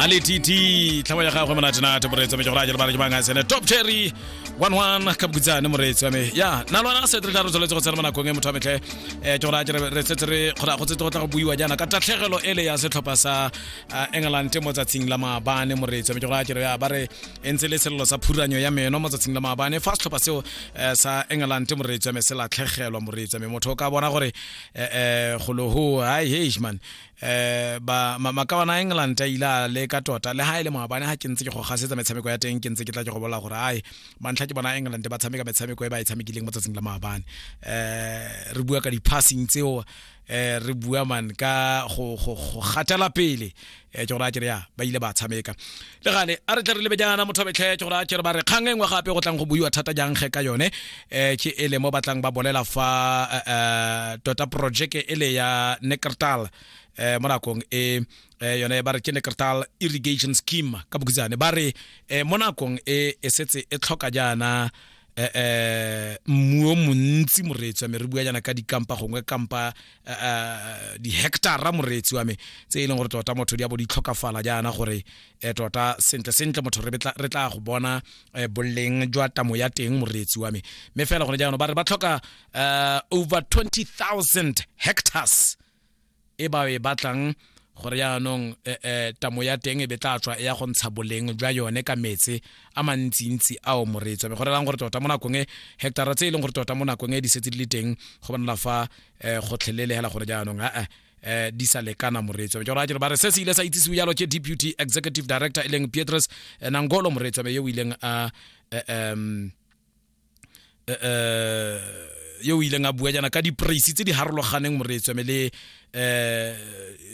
ale tt tlhabo ya gagwe monatenate moreetsi me ke gore a jalo bana ke bang a sene top cherry one one ka bokutsane moreetsi wa me ya na lwana setre tla re tsholetse go tsena mo nakong e motho wa metlhe um ke gore a jere re setse re kgora go tsetse go tla go buiwa jaana ka tatlhegelo e le ya setlhopha sa ah, england mo tsatsing la maabane moreetsi wa me ke gore a jere ya ba re e ntse le selelo sa phuranyo ya meno mo tsatsing la maabane fa setlhopha seo eh, sa england moreetsi wa me se latlhegelwa moreetsi wa me motho o ka bona gore eh, eh, golo ho hai heish man eh ba makawana England a ile a le ka tota le ha ile e maabane ha ke ntse ke go gasetsa metshameko ya teng ke ntse ke tla ke go bola gore ai mantlha ke bona England ba tshameka metshameko e ba e tshamekileng mo tsatsing la maabane eh re bua ka di passing tseo eh re bua man ka go go go gatela pele eh ke gore a ke ya ba ile ba tshameka le gale a re tle re lebe jaana motho betlhetse gore a kere ba re kgang e nngwe gape go tlang go buiwa thata jang ge ka yone um ke e le mo batlang ba bolela fa um tota projeke e le ya neckertal um mo nakong e yone ba re ke neckertal irrigation scheme ka bokutsane ba re um mo nakong e e setse e tlhoka jaana eh, eh mmu o montsi moreetsi wa me re bua jana ka dikampa gongwe kampa eh, eh, dihectara moreetsi wa me tse e leng gore tota motho di a bo di tlhokafala jaana gore um tota sentle sentle motho re tla go bona um boleng jwa tamo ya teng moreetsi wa me mme fela gone jaanong ba re ba tlhoka um over 20000 hectares e ba e batlang gore yaanong eh, eh, tamo ya teng e be tla tswa e ya go ntsha boleng jwa yone ka metse a mantsintsi ao moreetso be go relang gore tota mo nakong e hectara tse e leng gore tota mo nakong e di setse di le teng go bonala fa eh, gotlhelele hela gore jaanong aa eh, di sa lekana moreetso ke gore a kere ba re se se ile sa itsisiwe jalo ke deputy executive director e leng pietrus eh, nangolo moreetso be yo o ileng a eh, um eh, eh, yo o ileng a bua jaana ka dipraise tse di harologaneng moreetsweme le eh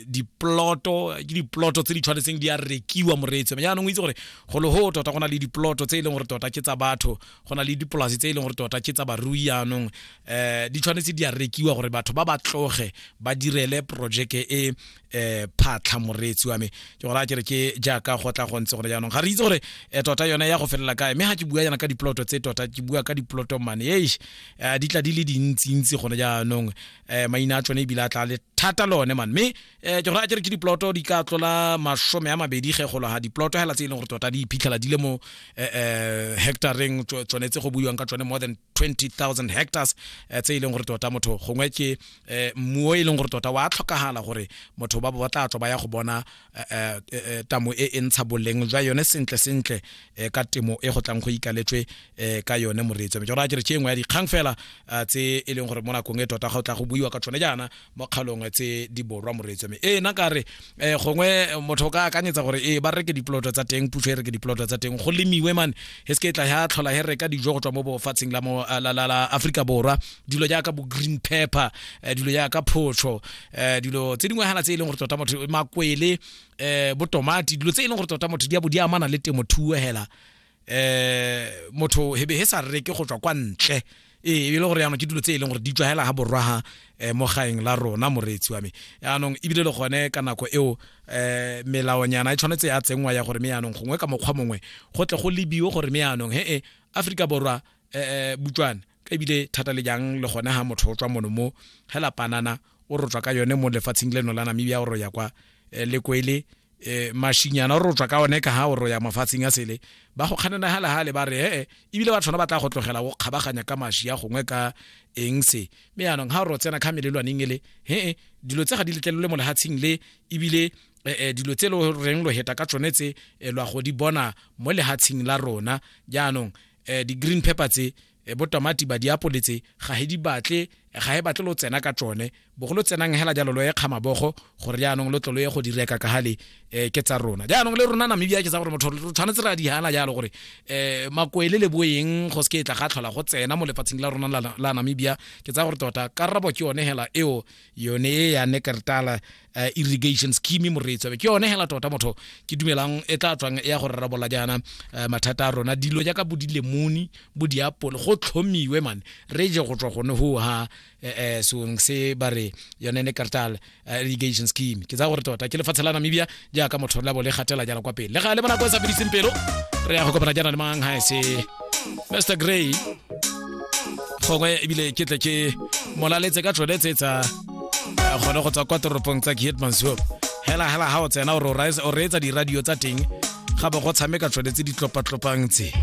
diploto ke diploto tse di tshwanetseng di a rekiwa moreetso mme jaanong o itse gore go le go tota go na le diploto tse e leng gore tota ke tsa batho go na le dipolase tse e leng gore tota ke tsa barui jaanong um di tshwanetse di a rekiwa gore batho ba ba tloge ba direle projeke e eh phatlha moreetsi wa me ke gore a kere ke jaaka go tla go ntse gore jaanong ga re itse gore eh, tota yone ya go felela kae mme ga ke bua yana ka diploto tse tota ke bua ka diploto mane eish eh, di tla di le dintsintsi gone jaanong eh, maina a tsone ebile a tla le thata lone man mme eh, ke gore a kere ke diploto di ka tlola masome a mabedi ge golo ga diploto hela tse e leng gore tota di iphitlhela di le mo eh, eh, hectareng tso- tsone tse go buiwang ka tsone more than 20000 hectares eh, tse e leng gore tota motho gongwe ke eh, mmuo e leng gore tota wa tlhokagala gore motho ba ba tla tswa ba ya go bona eh, tamo e e ntsha boleng jwa yone sentle sentle ka temo e go tlang go ikaletswe ka yone moreetso mme jora ke re tšengwe ya dikgang fela tse e leng gore mo nakong e tota ga o tla go buiwa ka tsone jaana mo kgalong tse di borwa moreetso me ee na ka re eh, gongwe motho o ka akanyetsa gore ee ba reke dipoloto tsa teng puso e reke dipoloto tsa teng go lemiwe mane e se ke tla ya tlhola he reka dijo go tswa mo bofatsheng la mo la la la Africa borwa dilo jaaka bo green pepper eh, dilo jaaka photsho eh, dilo tse dingwe hana tse e leng gore tota motho makwele eh, bo tomati dilo tse e leng gore tota motho di a bo di amana le temothuo hela eh motho hebe he sa reke go tswa kwa ntle ee e le gore yaanong ke dilo tse e leng gore di tswa hela ga borwa ha eh, mo gaeng la rona moreetsi wa me yaanong ebile le gone ka nako eo eh melaonyana e tshwanetse ya tsenngwa ya gore me yaanong gongwe ka mokgwa mongwe go tle go lebiwe gore me yaanong he e Afrika borwa eh, eh butswane ebile thata le jang le gone ga motho o tswa mono mo hela panana o rotswa ka yone mo lefatsheng leno la namibia o ro ya kwa eh, lekwele eh, mashinyana o rotswa ka one ka ha o ro ya mafatsheng a sele ba go kganana hale hale ba re ee ebile ba tshwana ba tla go tlogela go kgabaganya ka mashi ya gongwe ka eng se me yanong ha o ro tsena kha melelwaneng ele hee dilo tse ga di letlelole mo lehatsheng le ebile eh, eh, dilo tse lo reng lo heta ka tsone tse eh, lwa go di bona mo lehatsheng la rona jaanong eh, di-green pepper tse eh, bo tamati ba diapole tse ga he di batle eh, ga he batle lo tsena ka tsone bogo lo tsenang hela jalo lo ye kgamabogo gore jaanong lo tlolo ye go di reka ka gale um ke tsa rona jaanong le rona namibia ke tsa gore motho re tshwanetse re a di hana jalo gore um makoele le boeng go se ke e tla ga tlhola go tsena mo lefatsheng la rona la namibia ke tsa gore tota karabo ke yone hela eo yone e ya nekertala uh, irrigation scheme moreetso ke yone hela tota motho ke dumelang e tla tswang ya go rarabola jaana uh, mathata a rona dilo jaaka bo dilemoni bo diapole go tlhomiwe mane re je go tswa gone ho ha eh, eh, seong se ba re yone nekertala uh, irrigation scheme ke tsa gore tota ke lefatshe la namibia jaaka motho la bo le gatela jalo kwa pele le ga le bona ko e sa fediseng pelo re ya go kopana jana le mang ha se mr gray gongwe ebile ke tle ke molaletse ka tsone tse tsa eh, gone go tswa kwa toropong tsa kietmansop hela hela ha o tsena o reetsa diradio tsa teng ga bo go tshameka tsone tse di tlopatlopaang tse